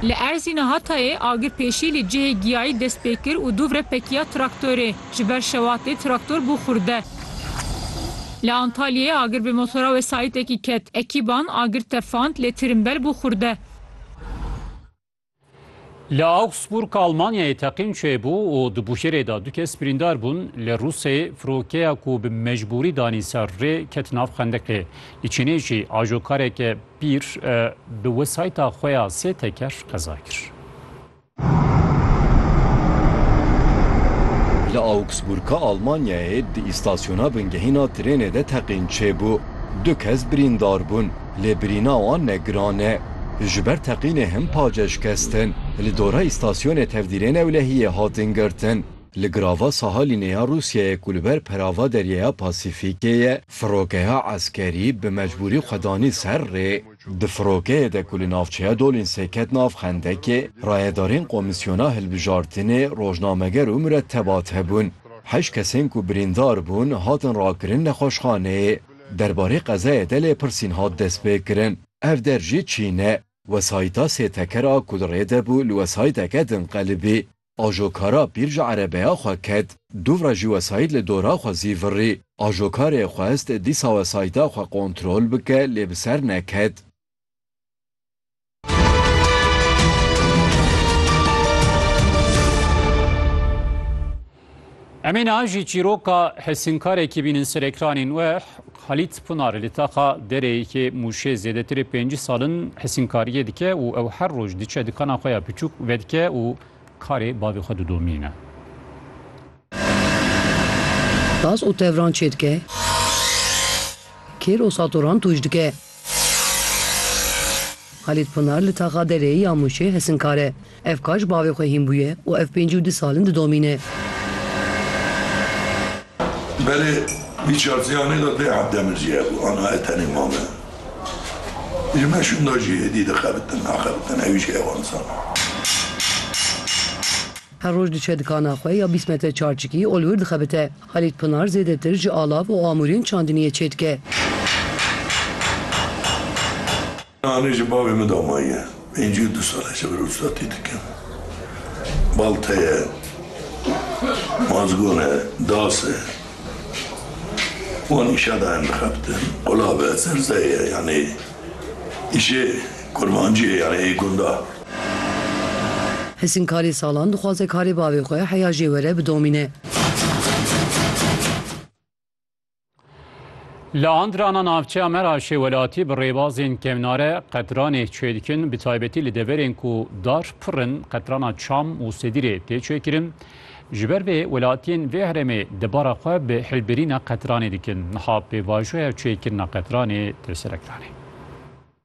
Li Erzîna Hatayê agir pêşî li cihê giyayî dest pê kir û dûvre pekiya traktorê. Ji ber şewatê traktor bû xurde. Li Antalyayê agir bi motora wesayîtekî ket. Ekîban agir tefand lê tirimbel bû xurde. Li Augsburg Almanyayê teqîn çêbû û di bûşêrê de du kes birîndar bûn. Li Rûsê firokeya ku bi mecbûrî danî ser rê ket nav xendiqê. Li Çînê jî ajokareke pîr bi wesayîta xwe ya sê teker qeza kir. Li Augsburga Almanyayê di îstasyona bingehîna trênê de teqîn çêbû. Du kes birîndar bûn. lê birîna wan ne giran e. Ji ber teqînê hin paceş kes tên li dora îstasyonê tevdîrê newlehiyê hatin girtin. Li girava Sahalînê ya Rûsyayê ku li ber perava Deryeya Pasîfîkê ye, firokeha eskerî bi mecbûrî xwe danî ser rê. Di firokeyê de ku li navçeya Dolînsê ket nav xendekê, rayedarên Komîsyona Hilbijartinê, rojnameger û muretebat hebûn. Heşt kesên ku birîndar bûn, hatin rakirin nexweşxaneyê. Derbarê qezayê de lêpirsîn hat destpêkirin. Ev der jî çîn e. Wesayîta sê teker a ku li rê de bû li wesayîteke din qelibî. Ajokara pîr ji erebeya xwe ket. Dûvra jî wesayît li dora xwe zî virî. Ajokarê xwest dîsa wesayîta xwe kontrol bike lê bi ser neket. Emê na jî çîroka hesînkarekî bînin ser ekranên we Halît Pinar li taxa dereyekê mûşê zêdetirê pêncî salin hesînkariyê dike û ew her roj diçe dikana xwe ya piçûk vedike û karê bavê xwe didomîne. Tas û tevran çêdike? Kêr û satoran tûj dike? Halît Pinar li taxa derê ya Mûşê hesinkar e. Ev ka ji bavê xwe hîn bûye û ev pêncî û du sal in didomîne. Berê wî çarsiyanê de dê eb demir jî hebû. Ana e tenê mam e. Ji meşûnda jî êdî dixebitin, axebitin. Ewî jî hewa insan e. Her roj diçe dikana xwe ya bîst metre çarçikî ol wir dixebite. Halît Pinar zêdetir ji alav û amûrên çandiniyê çêdike. Anî ji bavê min damaye. Pêncî û du sal e ji vir ustatî dikim. Balte ye, mazgon e, das e. Wan îşa dayem dixebitin. Qulav e, zerze ye. Yanî îşê kurmancî ye yanî ê gunda. Hisîn karê salan dixwaze karê bavê xwe heya jê were bidomîne. Li Andrana navçeya Meraşê welatî bi rêbazên kevnare qetranê çê dikin bi taybetî li deverên ku dar pir in qetrana çam û sedîrê tê çêkirin. Ji ber vê welatiyên vê herêmê debara xwe bi hilbirîna qetranê dikin. Niha pêvajoya çêkirina qetranê tê serekiranê.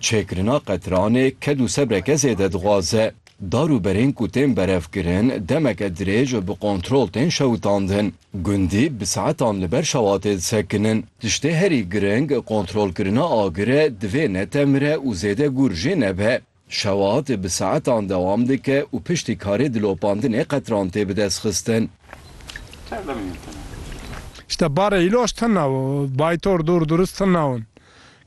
Çêkirina qetiranê ked û sebreke zêde dixwaze. Dar û berên ku tên berevkirin demeke dirêj bi kontrol tên şewitandin. Gundî bi saetan li ber şewatê disekinin. Tiştê herî giring kontrolkirina agir e divê netemire û zêde gûr jê nebe. Şewat bi saetan dewam dike û piştî karê dilopandinê qetiran tê bidestxistin. Ji te barê îloj tune û baytor dûr durist tune in.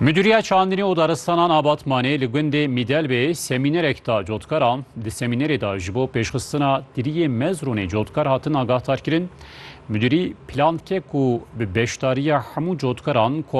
Müdiriya Çandinê û Daristanan a Batmanê li gundê Mîdelbê semînerek da cotkaran. Di semînerê de ji bo pêşxistina tiriyê mezrûnê cotkar hatin agahdarkirin. Müdirî plankek û bi beşdariya hemû cotkaran